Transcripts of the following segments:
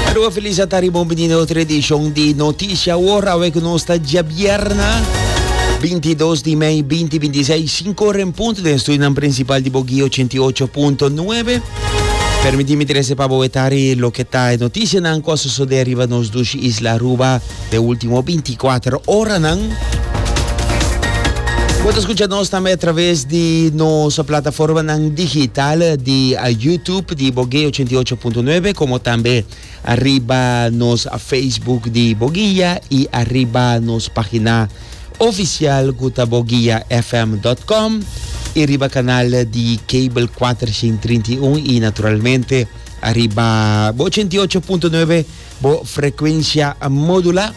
Aruba Felicia ta riba un bendido otro edición de Noticia Ahora, awe que nos está día viernes 22 de mei 2026, 5 horas en punto den estudio nan principal de Bogi 88.9. Permitime trece pa boetari lo que ta noticia nan cua sucede arriba nos dushi isla Aruba. den último binti kuater oranan. Bo ta skucha nos tambe atraves di nos plataformanan digital di YouTube di Boguey 88.9 komo tambe ariba nos Facebook di Boguia i ariba nos página ofisial ku ta boguiafm.com i riba kanal di kabel 431 i naturalmente ariba bo 88.9 Bo frecuencia modula.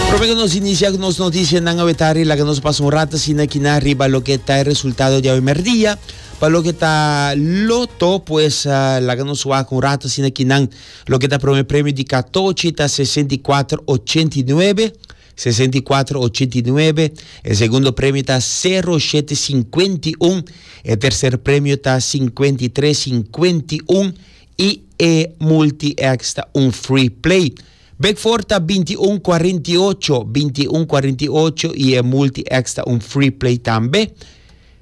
Prome cu nos inicia cu nos noticianan awetari laga nos pasa un rato asina kina riba loke ta e resultado di awe merdia. Pa loke ta Loto pues laga nos wak un rato asina kinan loke ta prome premio di katochi ta sesenta i kuater ochenta i nuebe. Sesenta i kuater ochenta i nuebe E segundo premio ta sero shete sinkuenta i un E terser premio ta sinkuenta i tres sinkuenta i un I e multi X ta un free play Bek for ta binti i un kuarenta i ocho binti i un kuarenta i ocho I e multi X ta un free play tambe.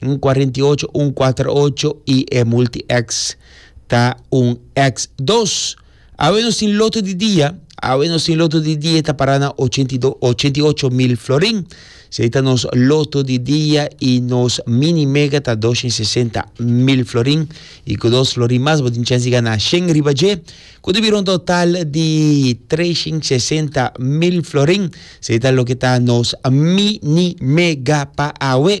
Un cuarenta y ocho, un cuater ocho y e multi-X ta un X dos. Awe nos tin loto di dia, awe nos tin loto di dia ta para na ochenta y dos, ochenta y ocho mil florin. Sei ta nos loto di dia y nos mini mega ta doscientos y sesenta mil florin. Y cu dos florin mas bo tin chance di gana shen riba dje, cu ta bira un total di trescientos y sesenta mil florin. Sei ta loke ta nos mini mega pa awe.